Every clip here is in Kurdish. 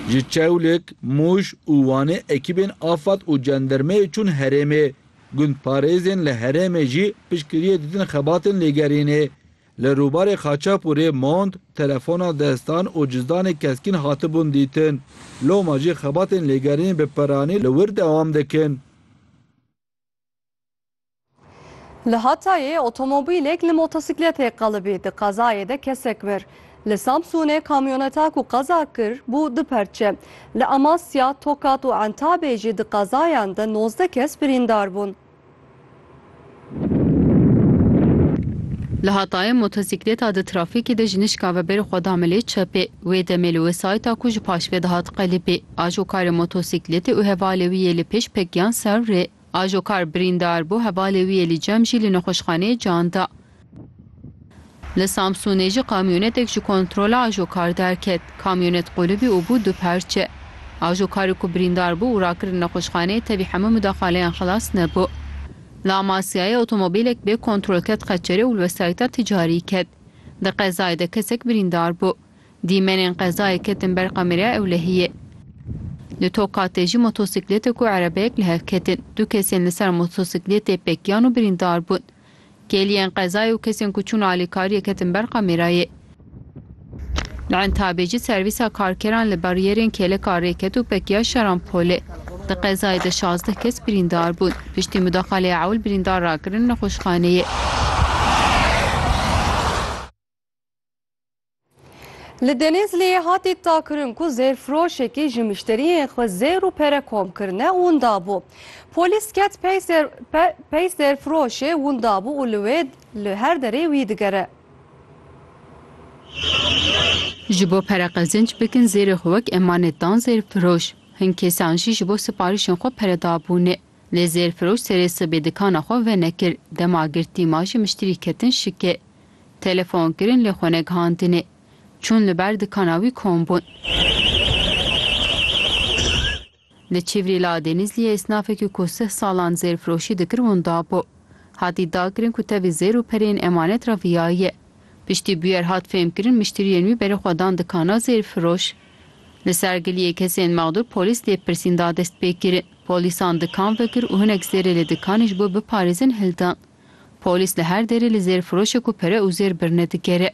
Ji Çewlik, Mûş û Wanê ekîbên afad û cendermeyê çûn herêmê. Gundparêzên li herêmê jî piştgiriyê didin xebatên lêgerînê. Li rûbarê Xaçepûrê mont, telefona destan û cizdanê keskîn hatibûn dîtin. Loma jî xebatên lêgerînê bi piranî li wir dewam dikin. Li Hatayê otomobîlek li motosîkletê qelibî, di qezayê de kesek mir. Li Samsûnê kamyoneta ku qeza kir bû du perçe. Li Amasya, Tokat û Entabê jî di qezayan de nozdeh kes birîndar bûn. Li Hatayê motosîkleta di trafîkê de ji nişka ve berî xwe da milê çepê. Wê demê li wesayîta ku ji paşve dihat qelibî, ajokarê motosîkletê û hevalê wî yê li pêş pekiyan ser rê. Ajo kar birîndar bû, hevalê wî yê li cem jî li nexweşxaneyê can da. Li Samsûnê jî kamyonetek ji kontrola ajo kar derket. Kamyonet qulibî û bû du parçe. Ajo karê ku birîndar bû û rakirin nexweşxaneyê tevî hemû mudaxaleyan xilas nebû. Li Amasyayê otomobîlek bê kontrol ket qeçerê û li wesayîta ticarî ket. Di qezayê de kesek birîndar bû. Dîmenên qezayê ketin ber kameraya ewlehiyê. Li Tokatê jî motosiklêtek û erebeyek li hev ketin. Du kesên li ser motosiklêtê pekiyan û birîndar bûn. Kêliyên qezayê û kesên ku çûn alîkariyê ketin ber kamerayê. Li Entabê jî servîsa karkeran li bariyerên kêleka rê ket û pekiya Şarampolê. Di qezayê de şazdeh kes birîndar bûn. Piştî mudaxaleya ewil birîndar rakirin nexweşxaneyê. Li Denizliyê hatî takkirin ku zêrfiroşekî ji mişteriyên xwe zêr û pere kom kirine winda bû. Polîs ket pey zêrfiroşê winda bû û li wê li her derê wî digere. Ji bo pere qezinc bikin zêrê xwe wek emanet dan zêrfiroş. Hin kesan jî ji bo siparîşên xwe pere dabûne. Lê zêrfiroş serê sibê dikana xwe venekir, dema girtî ma ji miştirî ketin şike. Telefon kirin lê xwe negihandinê. Çûn li ber dikana wî kom bûn. Li Çîvrî li Adênîzliyê esnafekî ku sih salan zêr firoşî dikir winda bû. Hatî dakirin ku tevî zêr û pereyên emanet re viyaye. Piştî bûyer hat fêmkirin miştiriyên wî berê xwe dan dikana zêr firoş. Li ser giliyê kesên mexdûr polîs lêpirsîn da destpêkirin. Polîsan dikan vekir û hinek zêrê li dikanê ji bo biparêzin hildan. Polîs li her derê li zêrfiroşê ku pere û zêr birine digere.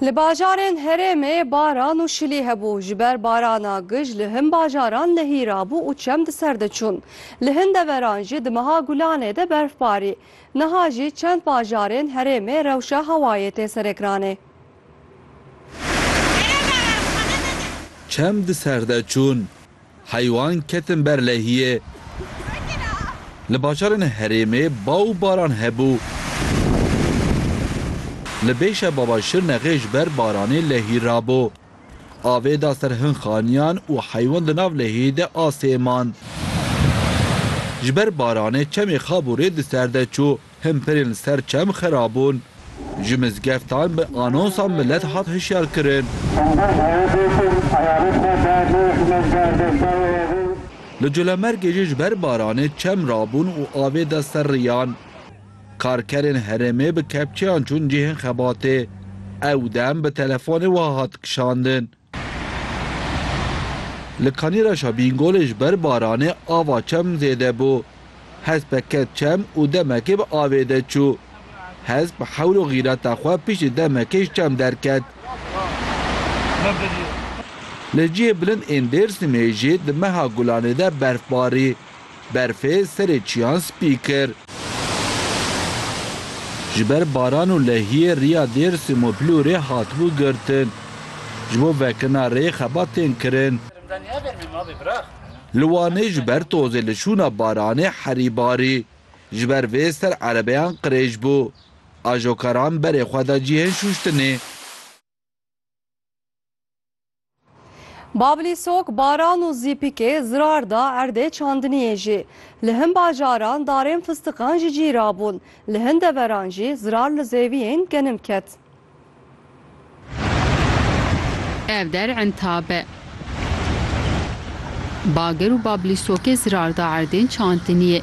Li bajarên herêmê baran û şilî hebû. Ji ber barana gij li hin bajaran lehî rabû û çem di ser de çûn. Li hin deveran jî di meha gulanê de berf barî. Niha jî çend bajarên herêmê rewşa hewayê tê serekranê. Çem di ser de çûn. Heywan ketin ber lehiyê. Li bajarên herêmê ba û baran hebû. Li bêşa Baba Şirnexê ji ber baranê lehî rabû. Avê da ser hin xaniyan û heywan di nav lehiyê de asê man. Ji ber baranê çemê xabûrê di ser de çû. Himperên li ser çem xera bûn. Ji mizgeftan bi anonsa milet hat hişyar kirin. Li Colemêrgê jî ji ber baranê çem rabûn û avê da ser riyan. Karkerên herêmê bi kepçeyan çûn cihên xebatê. Ew dem bi telefonê wiha hat kişandin. Li Kanîraşa Bîngolê ji ber baranê ava çem zêde bû. Hespek ket çem û demekê bi avê de çû. Hesp bi hewl û xîreta xwe piştî demekê ji çem derket. Li cihê bilind ên Dêrsimê jî di meha gulanê de berf barî. Berfê serê çiyan spî kir. Ji ber baran û lehiyê riya Dêrsim û Plûrê hatibû girtin. Ji bo vekirina rê xebat tên kirin. Li Wanê ji ber tozê li şûna baranê herî barî. Ji ber vê ser erebeyan qirêj bû. Ajokaran berê xwe da cihên şûştinê. Bablî sok baran û zîpikê zirar da erdê çandiniyê jî. Li hin bajaran darên fistiqan jî cî rabûn. Li hin deveran jî zirar li zêviyên genim ket. Ev der intab e. Bager û bablî sokê zirar da erdên çandiniyê.